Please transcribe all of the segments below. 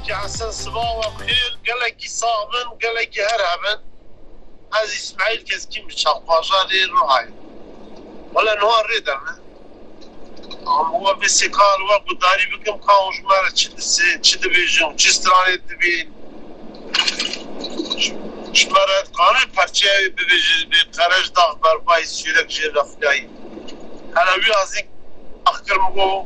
Kehsen siva we bixêr gelekî sax bin gelekî her hebin ez ismaîl keskîn bi çavpaja rê rihayê wele niha rê de me am we bêsê ka li we gudarî bikim ka hûn ji me re çi disên çi dibêjin û çi stranê dibên ji me re dikanê perçeya wê bibêje ji bê qerej dax berbayî sûrek jê vexileyî hele wî azîn ax kir min got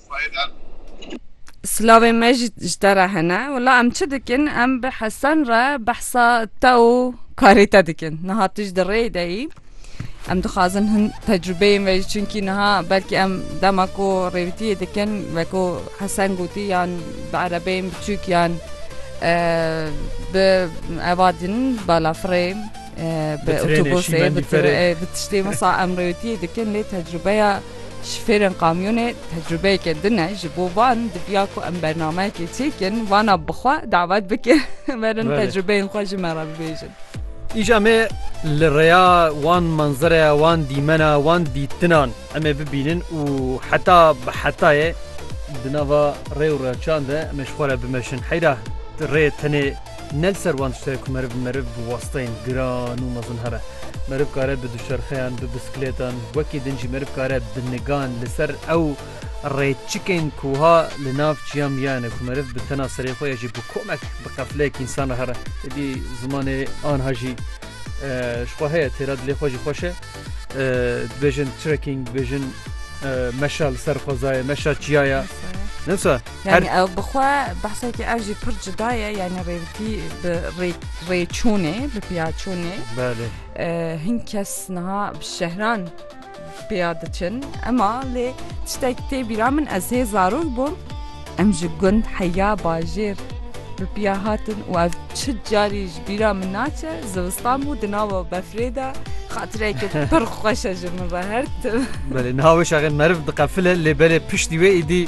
Silavên me jî ji te re hene. Wela em çi dikin? Em bi Hesen re behsa te û karê te dikin. Niha tu ji di rêyê de yî. Em dixwazin hin tecrûbeyên ve jî çunkî niha belkî em dema ku rêwitiyê dikin weko Hesen gotî yan bi erebeyên biçûk yan bi eva din bala firê bi otobusê bi tiştê wisa em rêwitiyê dikin lê tecrûbeya Şofêrên kamyonê tecrûbeyeke din e, ji bo van diviya ku em bernameyekê çêkin, vana bi xwe dawet bikin werin tecrûbeyên xwe ji me re bibêjin. Îja me li rêya wan manzereya, wan dîmena, wan dîtinan em ê bibînin û heta bi hetayê di nava rê û reçan de em ê ji xwe re bimeşin. Heyra rê tenê. Ne li ser wan tişt heye ku meriv meriv bi wasteyên giran û mezin here. Meriv kare bi duşerxeyan, bi biskilêtan, wekî din jî meriv kare bi nigan li ser ew rêçikên ku wiha li nav çiyan miyayane ku meriv bi tena serê xwe ya jî bi komek bi qefleyek însan re here. Êdî zimanê anha jî ji xwe heye, têra dilê xwe jî xweş e. Dibêjin trekking, dibêjin meşa li ser xwezayê, meşa çiya ya. Ne wisa? Yani ew bi xwe behsekî ev jî pir cida ye yani rêvitî bi rêçûnê bi piyaçûnê hin kes niha bi şehran pêya diçin ema lê tiştek tê bîra min ez hê zarok bûm em ji gund heya bajêr bi piya hatin û ev çi carî ji bîra min naçe zivistan bû di nava befrê de xatireke pir xweşe ji min re her tim Belê niha wê şaxê meriv diqefile lê belê piştî wê îdî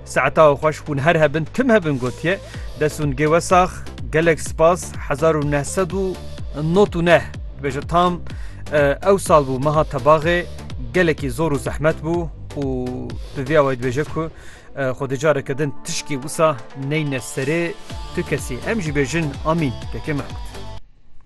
Saeta xweş hûn her hebin tim hebin gotiye dest û nigê we sax gelek spas hezar û neh sed û not û neh dibêje tam ew sal bû meha tebaxê gelekî zor û zehmet bû û bi vê awayî dibêje ku xwe di careke din tişkî wisa neyne serê tu kesî em jî bêjin amîn tekê me kut.